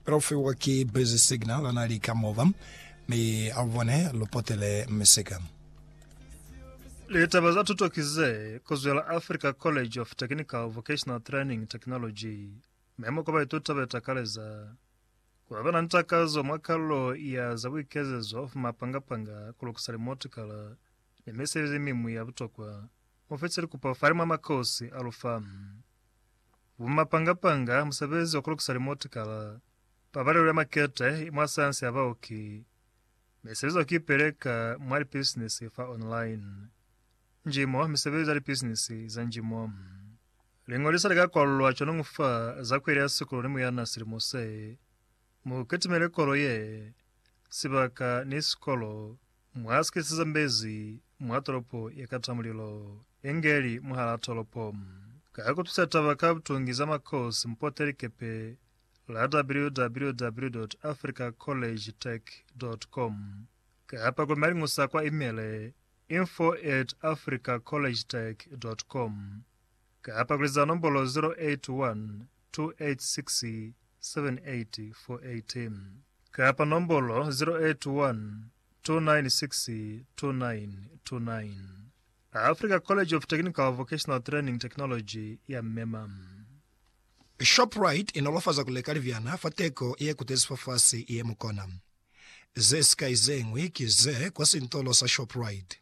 Kaufewa ki busy signal ana li ka mova, mi alubone lu potele misika. Litaba za tuto ki ze kozwela Africa College of Technical Vocational Training Technology memo kwa baituta be takaleza ku ba na ni takazo mwa kalulo ya za buikezezo of mapanga-panga ku lukisa limotikala ni misebezi mi mwi ya butokwa mu fitile kupo fa limwa makosi a lu fa. Bumapanga-panga, musebezi wa ku lukisa limotikala, pabalelo ya makete mwa sayansi ya baoki, ne sebezo ya ku ipeleka mwa lipisinisi fa online, njimo, misebezi ya lipisinisi za njimo. Liñolisa li ka kwalulwa cwañu fa za kweli ya sikolo ni muyana silimo se. Mu kitimele kolo ye, sibaka, ni sikolo. Mwa sikisi ze mbezi mwa tolopo ye kata mulilo, inge li mwahal'a tolopo. Ka ku tusa taba ka butungi za makosi, mupoteli likepe la www.africacollegetech.com kapa ku maliñusa kwa imele, info at africacollegetech.com, Ka apakeliza nombolo 0812867848 kapa nombolo 0812962929, Africa College of Technical Vocational Training Technology ya mema. Shoprite inolofaza ku leka libyana fa teko ye kutezi fafasi ye mukona. Ze sikai ze ñwi ki ze kwa sintolo sa Shoprite.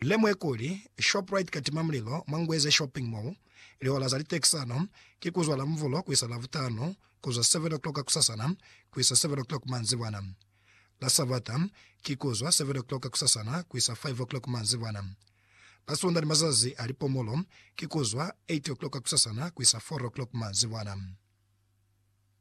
Lemuhe kuli, Shoprite katima mulilo mwa Ngweze Shopping Mall, lihola za litekisano ki kuzwa Lamvulo kuisa Lavutanu, kuzwa 7 o'clock kusasana kuisa 7 o'clock manzibwana. La Savata ki kuzwa 7 o'clock kusasana kuisa 5 o'clock manzibwana. La Sunda ni mazazi a lipomolo ki kuzwa 8 o'clock kusasana kuisa 4 o'clock manzibwana.